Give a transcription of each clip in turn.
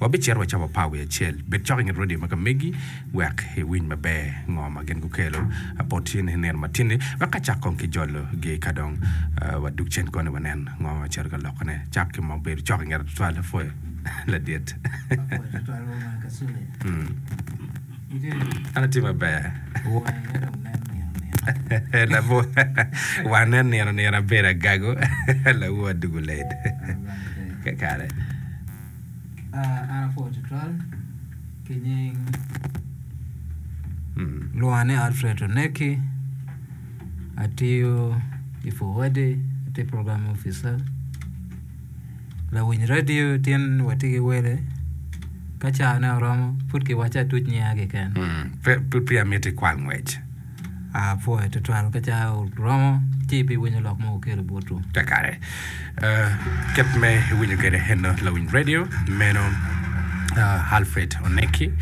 Wabicito wa ca wapar wiye acel, bed cok i nget radio ma ka megi wek iwiny maber ngo ma gin gukelo bot in i nino matinni wek ka cak kong ki jolo gi ka dong wadug cen koni wanen ngo ma cito ka lokone cak ki mo bedo cok i nget tutwal lapwoyo ladit an atye maber wane nino nino abedo agago lawu adugu late kakare. An apwoo tutwal ki nying lwonga ni Alfred Oneki atiyo i Fuwadi atye program opica lawiny radio tye ni watye ki wele ka cane oromo pud kiwaco atuc nyinga keken. Mm. Pe, pe, pe amiti kwal ngwec. Apwoyo tutwal ka cawa oromo ci ibiwinyo lok ma wuketo botwu. Kakare. Uh, kit me winyo kede eno lawiny radio meno uh, Alfred Oneki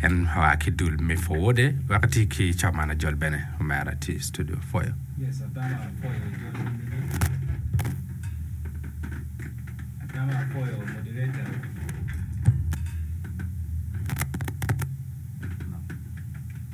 en oa ki dul me Fowode wek ti ki Chaman Ajol bene omera ti studio Foyo. Yes, atama apoyo jol atama apoyo moderator.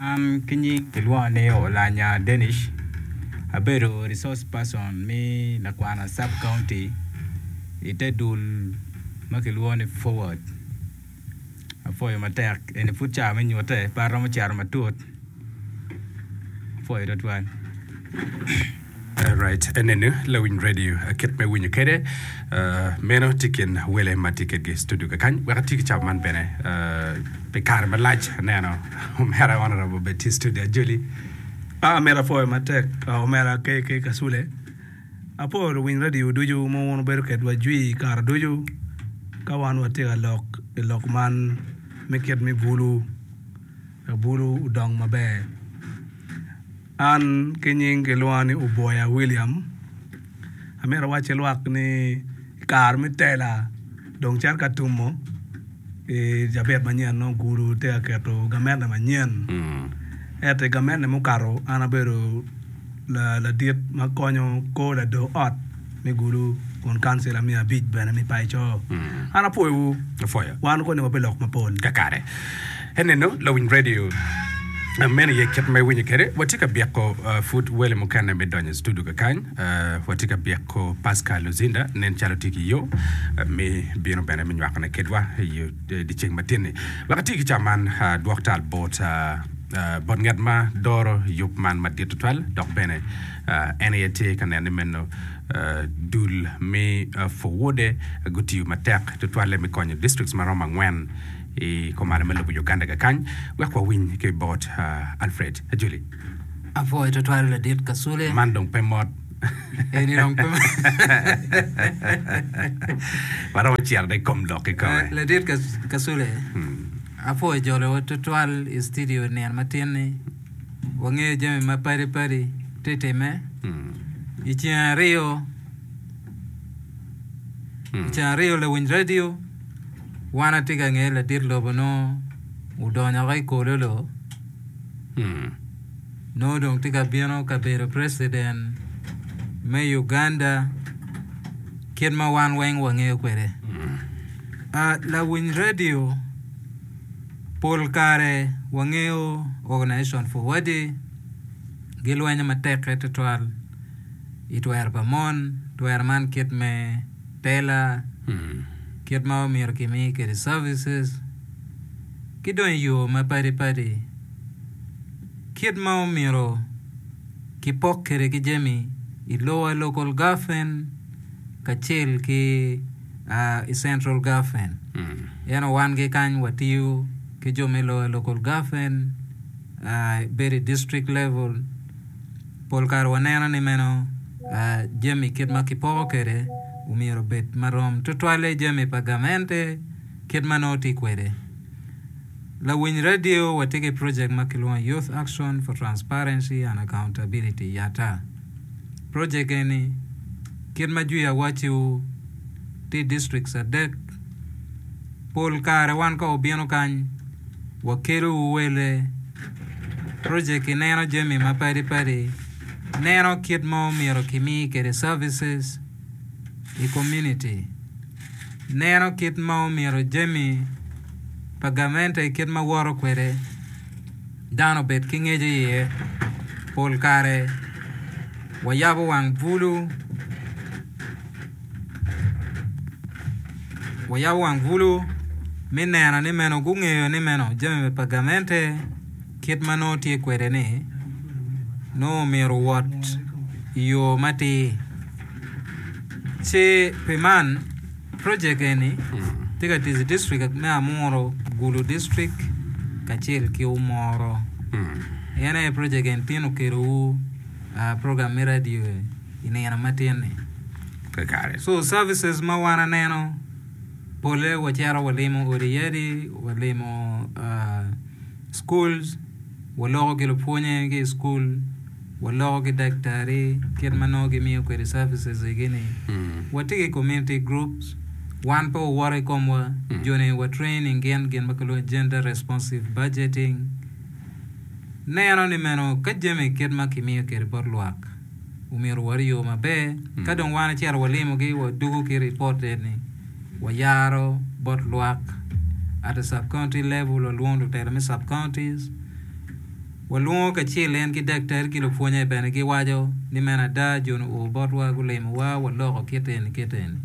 An ki nying kilwonga ni Olanya Denish abedo resource person me Lagwana sub county i te dul ma kilwongo ni Forward apwoyo matek eni pud ca me nyutte pe aromo cito matut apwoyo tutwal. Alright, enenu lawiny radio kit me winyo kede. Meno tye kin wele ma tye kedgi studio kakany. Wek atye ki cab man bene pi kare malac aneno omera honorable bed tye studio ajoli. Ah, mera apoyo matek. Ah, omera KK Kasule. Apoyo luwiny radio ducu ma wun wubedo kedwa jwi kare ducu ka wan watye ka lok i lok man me kit me bulu. Labulu odong maber. An ki nying kilwonga ni Uboya William. Amito awacci lwak ni i kare me tela dong cito ka tumo i cabit manyen nongo gudo tye ka keto gamente manyen. Ento i gamente mukato an abedo ladit ma konyo kor lador ot. me gulu kun kancila me abic bene me paco. Mm. An apwoyowu. Apwoyo. Wan okone wape lok mapol. Kakare. Eneno lawiny radio Uh, meno ye kit ma iwinyo kwede watye ka byeko uh, pud wele mukene me donyo i studio kakany uh, watye ka byeko pascal luzinda nen calo tye ki yo uh, me bino bene me nywakone kedwa i yo- i dyeceng matinni wek ati ki ca man uh, dwok tal bot uh, uh, bot ngat ma doro yub man madit tutwal dok bene En aye tye ka neno ni meno dul me Forward-e gutiyo matek tutwalle me konyo distrikts ma romo angwen i komane me lobo Uganda kakany. Wek wawiny ki i bot Alfred Ajoli. Apwoyo tutwal Ladit Kasule. Man dong pe mot. Eni dong pe Waromo cito dong i kom lok kikome. Ladit Kas- Kasule, apwoyo jolowa tutwal i studio nino matin-ni. wangeyo jami ma padi padi ti time i ceng ariyo i ceng ariyo lawiny radio wan ati ka nge ladit lobo no odonyo ki kololo no dong ti ka bino ka bedo preciden me Uganda kit ma wan weng wangeyo kwede lawiny radio Pol kare wangeyo Organisation for Wadi gilwenyo matekke tutwal i twero pa mon. Twero man kit me tela, kit ma omyero kimi kwede services, ki dong i yo ma padi padi. Kit ma omyero kipok kwede ki jami i lowa, Local Government kacel ki. i Central Gaffin. En owangi kany watiyo ki jo me loya Local Gaffin, bedo i District Level. Pol kare waneno ni meno jami kit ma kipoko kwede omyero obed ma rom, tutwalle jami pa gamente kit ma nongo tye kwede. Lawiny radio watye ki projek ma kilwongo Youth Action for Transparency and Accountability, YATA. Projek eni, kit ma jwi awaci-wu tye i districts adek, pol kare wan ka wubino kany, wakelowu wele. Projek-ki neno jami ma padi padi, neno kit ma omyero kimi kwede services i komuniti. neno kit ma omyero jami pa gamente kit ma woto kwede dano obed ki ngec iye. Pol kare wayabo wang bulu, wayabo wang bulu me neno ni meno gungeyo ni meno jami pa gamente kit ma nongo tye kwede-ni nongo omyero owot i yo matir. Ci pi man, projek eni tye ka tic i distrik me Amuru, Gulu distrik kacel ki Umoro. En aye projek eni tin okelowu program me radio i nino ma tin-ni. Kakare. So services ma wan aneno pole wacito walimo odi yadi, walimo uh, schools, waloko ki lupwonye ki i school, Waloko ki daktari kit ma nongo gimiyo kwede services egi ni watye ki community groups, wan pe wawoto i komwa, joni wa training gin gin ma kilwongo ni gender responsive budgeting, neno ni meno ka jami kit ma kimiyo kwede bot lwak omyero wot i yo maber, ka dong wan icito walimogi wadugu ki report eni wayaro bot lwak at a sub county level walwongo lutela me sub counties. Walwongo kacel en ki daktari ki lupwonye bene giwaco ni meno ada John oo botwa gulimowa waloko kit eni kit eni.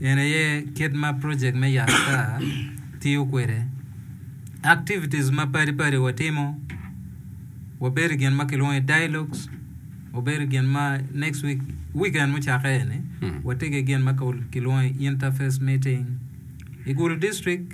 En aye kit ma project me yat ata tiyo kwede. Activities ma padi padi watimo wabedo gin ma kilwongo ni dialogues wabedo gin ma next week weekend mucakke eni watye ki gin ma kilwongo ni interface meeting i Gulu district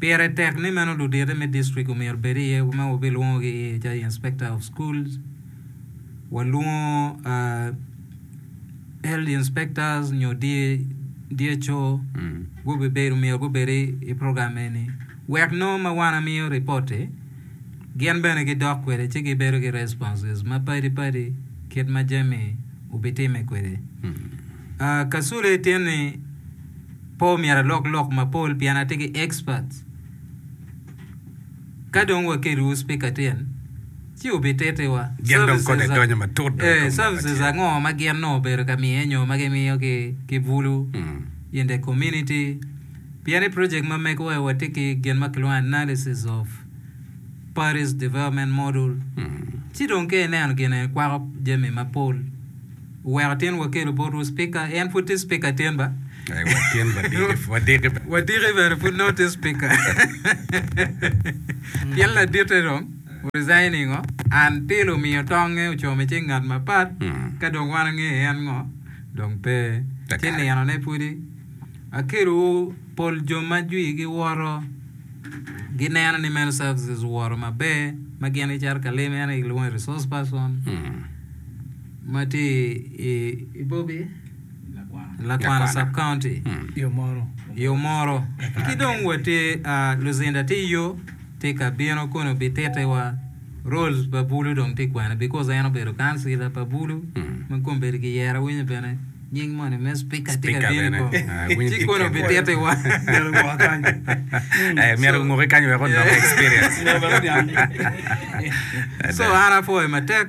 Pire tek ni meno ludito me district omyero bed iye ma wabilwongogi iye calo inspector of schools, walwongo health inspectors nyo DHO gubibedo omyero gubed i program eni wek nongo ma wan amiyo ripot-ti gin bene gidok kwede ci gibedo ki responses mapadi padi kit ma jami obitimme kwede. Kasule tye ni. Pe omyero alok lok mapol pien atye ki experts. Ka dong wakelliwu speaker tin, ci wubitittiwa. Gin dong kodi Services a- donyo matut dong i Eh, kom mwaka services acel. ango ma gin nongo obedo ka miye nyo ma gimiyo ki ki bulu in the community? Pien i project ma megowa watye ki gin ma kilwongo analysis of Parish Development Model. Ci dong ka ineno gin eni kwako jami mapol. Wuweko tin wakelu botwu Spika. En pud tye Spika tin ba? Ee, watin, wadiki, wadiki bene. Wadiki bene pud nongo tye Spika. Pien laditte dong o-resign ningo? An pile omiyo tongnge ocomo i cing ngat mapat, ka dong wan ange en ngo, dong pe. Ci ninone pudi akelowu pol jo ma jwigi woto, gineno ni meno services owoto maber, ma gin gicato ka lim en aye gilwongo ni resource person. ma tye i Bobi, Lakwana Sub-County, yo moro. Ki dong watye, luzinda tye yo, tye ka bino kono bitittiwa. Rolls pa Bulu dong tye kwene because en obedo Councillor pa Bulu ma kong bedo ki yero awinyo bene nying moni me Speaker tye ka bino kong. Ci kono bitittiwa. Eh, myero onguki kany wek onongo experience. So an apwoyo matek.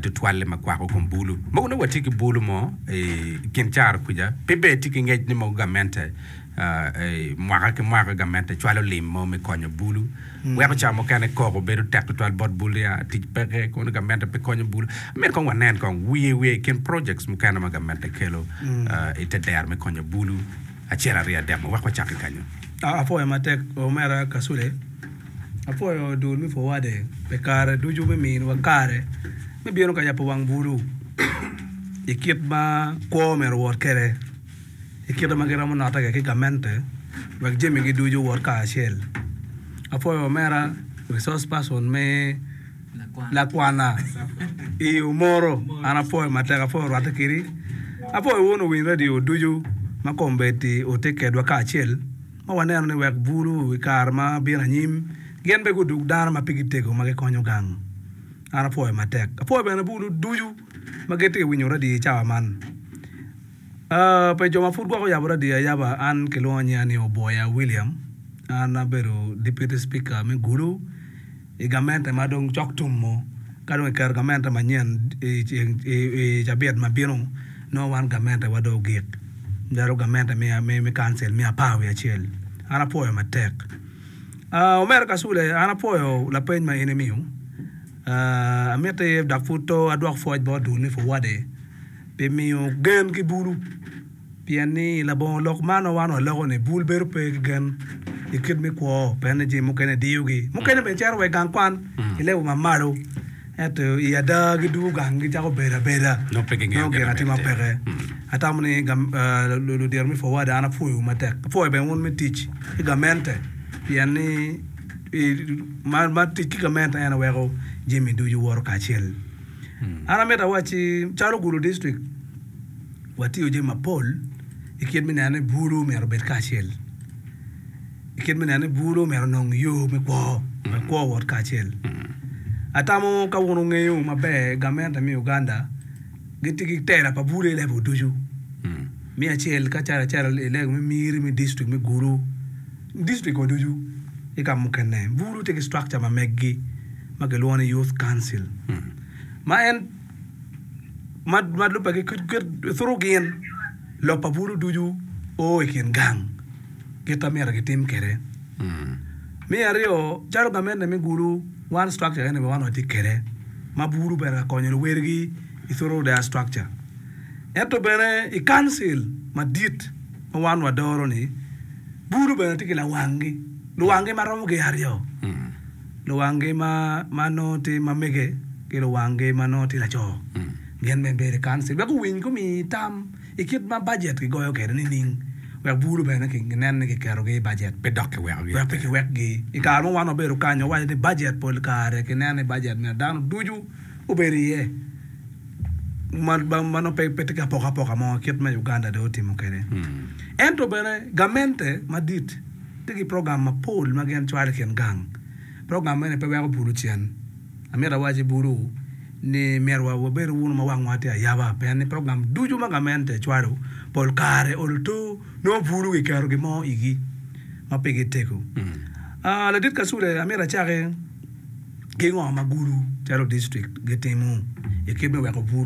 tutwalle ma kwako kom bulu. Mogo nongo watye ki bulu mo i kin caro kwica, pe ber tye ki ngec ni mogo gamente mwaka ki mwaka gamente cwalo lim mo me konyo bulu. Weko ca mukene koko bedo tek tutwal bot bulu ya tic peke kono gamente pe konyo bulu. Myero kong wanen kong wiye wiye i kin projects mukene ma gamente kelo i te dero me konyo bulu acel aryo adek mo wek wacak ki kenyo. Apwoyo matek omera Kasule. Apwoyo dul me Forward-de pi kare ducu me miyowa kare me bino ka yabo wang bulu i kit ma kwo myero owot kwede, i kite ma giromo notte kwede ki gamente wek jamigi ducu owot kacel. Apwoyo omera resource person me lakwana i yo moro. An apwoyo matek, apwoyo rwatte kedi. Apwoyo wun luwiny redio ducu ma kombeddi wutye kwedwa kacel. ma waneno ni wek bulu i kare ma bino anyim gin bene gudug dano ma pigi tego ma gikonyo gang. An apwoyo matek. Apwoyo bene bulu ducu ma gitye ka winyo radiyo i cawa man. Uh, pe jo ma pud gwok oyabo radiyo ayaba, an kilwongo nyiya ni Oboya William. An abedo Deputy Speaker me Gulu. i gamente ma dong cok tum mo ka dong kiketo gamente manyen i cabit ma bino nongo wan gamentewa dong ogik calo gamente me kancil me apar wiye acel an apwoyo matek omere kacule an apwoyo lapeny ma in imiyo amiti dok pud to adwok pwoc bot dul ni puwade pi miyo gen ki bulu. Pien ni i labongo lok man ma wan waloko-ni, bul bedo pe ki gen i kit me kwo, pien ni jami mukene diyogi. Mukene bene cito wa i gang kwan i level ma malo, ento i ada gidwogo gang gicako bedo abeda, Nongo pe gingeo nongo gin gin atima atir. peke. Atamo ni gam, ah, lu- lu- ludito me Forward an apwoyowu matek. Apwoyo bene wun me tic ki gamente, pien ni i- ma ma tic ki gamente en aye weko jami ducu woto kacel. An amito awacci, calo Gulu District, watiyo jami mapol i kit me neno ni bulu myero obed kacel, i kit me neno ni bulu myero onong yo me kwo wek kwo owot kacel. Atamo ka wun wungeyo maber gamente me Uganda gitye ki tela pa bulu i level ducu. Me acel kacel acel i level me Miri me district me Gulu, district wa ducu ki ka mukene bulu tye ki structure ma meggi ma kilwongo ni Youth Council ma en ma lubbe gituru gin lok pa bulu ducu o i kin gang kit ma myero gitim kwede. Me aryo, calo gamente me bulu one structure keken aye wan watye kwede ma bulu bene ka konyo luwadigi i thuru their structure. Ento bene i Council madit ma wan wadoro-ni bulu bene tye ki lawanggi, luwanggi ma romo gin aryo. Luwanggi ma ma nongo tye ma mege ki luwanggi ma nongo tye laco gin bene bedo i Council wek guwiny gumi tam i kit ma bajet gigoyo kwede nining wek bulu bene ginen ni kiketogi i bajet pe dok kiwekogi wek pe kiwekgi. I kare mo wan wabedo kany wawaco ni bajet pol kare kineno ni bajet myero dano ducu obed iye ma ma nongo pe tye ki apokapoka mo kit ma Uganda dong otimo kwede. Ento bene gamente madit. Tye ki program mapol ma gin cwalo i kin gang. Program mene pe weko bulu cen. Amito awac i bulu ni myero wa wabed wunu ma wangwa tye ayaba pien ni program ducu ma gamente cwalo pol kare olo to nongo bulu giketo gin mo igi ma pe gitego. Aa, Ladit Kasule, amito acaki ki ngo ma Gulu calo district gitimo i kit me weko bulu?